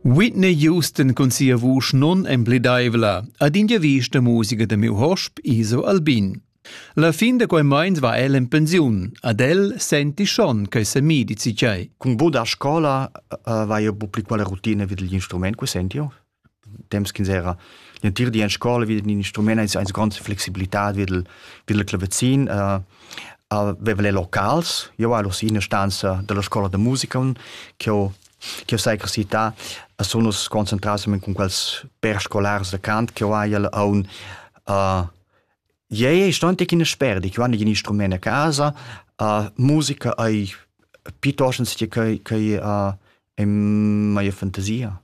Whitney Houston cun sia vusch non emblidaivla ad in giavisch da musica da miu hosp Iso Albin. La fin da quei meins va el en pensiun. Ad el senti schon che se mi dici tgei. Cun boda scola uh, vai eu bu pli quella routine vid gli instrument, que senti io? temps ch'ins era l'entir di en scola vid in instrument eis eins gronds flexibilitad vid il vid il clavazin uh, aveva le locals io alo si in stanza della scuola da musica che ho che ho sai crescita a sono concentrato con quels per scolars da cant che ho hai a un uh, Iei sto antic in sperdi, che vanno in instrument a casa, uh, musica ai piuttosto che che che uh, è mai fantasia.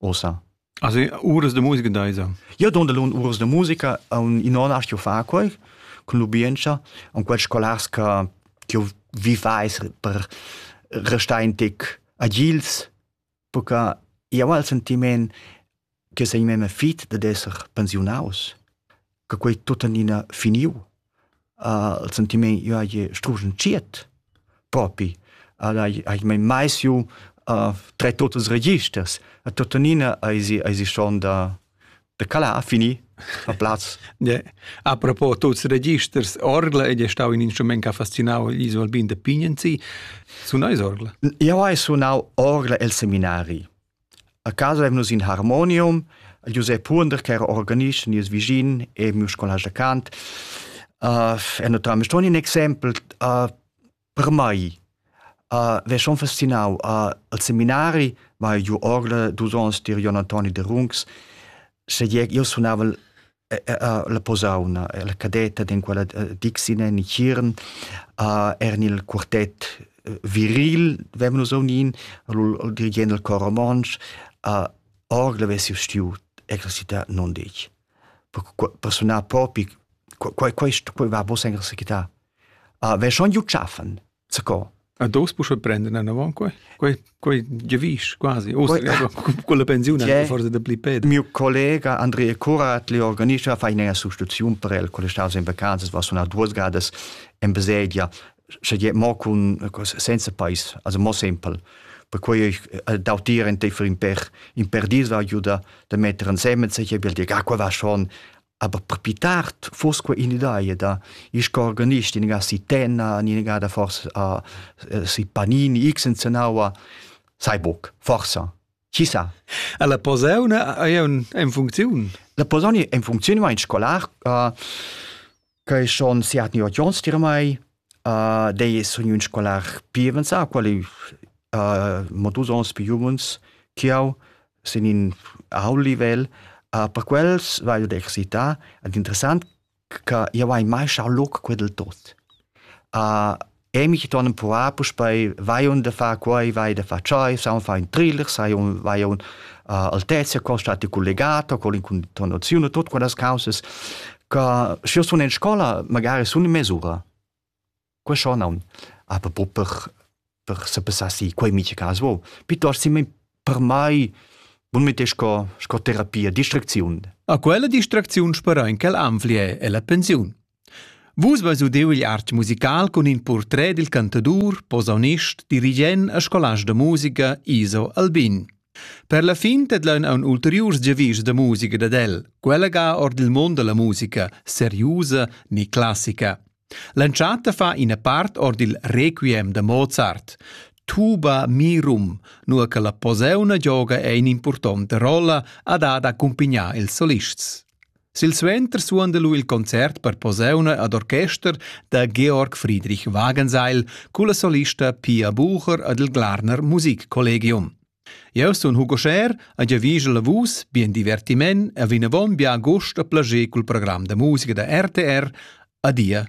Ussa. Also uras de musica deisa. Io don lun uras de musica un in on astio fa quei con l'ubienza un quels scolars che io vivais per restar in tic agils perché io ho il sentiment che sei memme fit dad esser pensionaus. che quei tuttenina finiu. Uh, il sentiment io hai strugenziet propi. Uh, hai, hai mai mai siu uh, tre totes registers. A tuttenina hai si, hai si schon da, da cala a fini a plaz. Yeah. A propos tuts registers, orgla ed è stau in instrument che ha fascinau gli Alpin de Pignenzi. Sunau is orgla? Io hai sunau orgla el seminari. A casa eivn nus in harmonium, il Giusep Huonder ch'eira organist nies vischin e miu scolast da cant, er natüralmaing ston in exaimpel per mai. V'he schon fascinau. Al seminari vai giu orgla dus ons tier Jon Antoni Derungs, sche io sunava'l la posauna, la cadetta in quella Dixine in Chiren, eran il quartet viril, vevan nus unin, il dirigent del cor romontsch, orgel avessi stiu exercitar non dec. Per sunar propi, quei quei quei va bos exercitar. Ve schon giu tschaffen. Zaco. A dos pusche prenden anavon quei? Quei quei gevisch quasi. Uss con la pensiun forse da pli ped. Mio collega Andrea Curat li organischa fa ina sostituziun per el con staus in vacanzas was una duas gadas in baselgia sche je mo con senza pais also mo simpel per quei ich äh, dautir in te für in per in per dis war juda da metter ansemmen se je bil dir ah, qua war schon Aber più tard foss quei in'idea da il organist in ga si Tenna, in ga da forse a si Panini, x in Zenaua, sai buc, forsa. Chi sa? La posauna è in funzione. La posauna è in funzione, ma in scolar, uh, che schon siat ni ot jons dir mai, Dei sun ün scolar pi avanzà, qual ei mo dus ons pi u mens ch'jeu sin in ault livel. Per quels vaiu ad excitar ed interessant che jeu hai mai schau loc quei dil tot. Emi che ton empruvar puspei vai aunc da far quei, vai da far tschei, saun far ün thriller, sai aunc, vai aunc Altezia, col stati collegato, col incontonaziun e tut quellas causas. Ca schi sun in scola magari sun in mesura. Que scho naun. Aber pro per per se passassi quei miche cas vo. Piuttosto si per mai bun mit sco sco terapia distracziun. A quella distracziun spera in quel anflie e la pensiun. Vus vas udeu il arch musical cun in portret dil cantadur, posaunist, dirigent e scolast da musica Iso Albin. Per la fin tedlaun aun ulteriurs giavischs da musica dad el, quella ga or dil mund dalla musica, seriusa ni classica. L'entschatta fa ina part or dil requiem da Mozart. Tuba mirum, nur che la poseuna gioga è in importante rolla ad ad accumpignar ils solists. Silsuenter suonda lu il concert per posauna ad orchester da Georg Friedrich Wagenseil culla solista Pia Bucher ed il Glarner Musikkollegium. Jeu sun Hugo Scher e giavigel a vus bien divertiment e vinavon bia gust a plager cul program da musica da RTR. Adia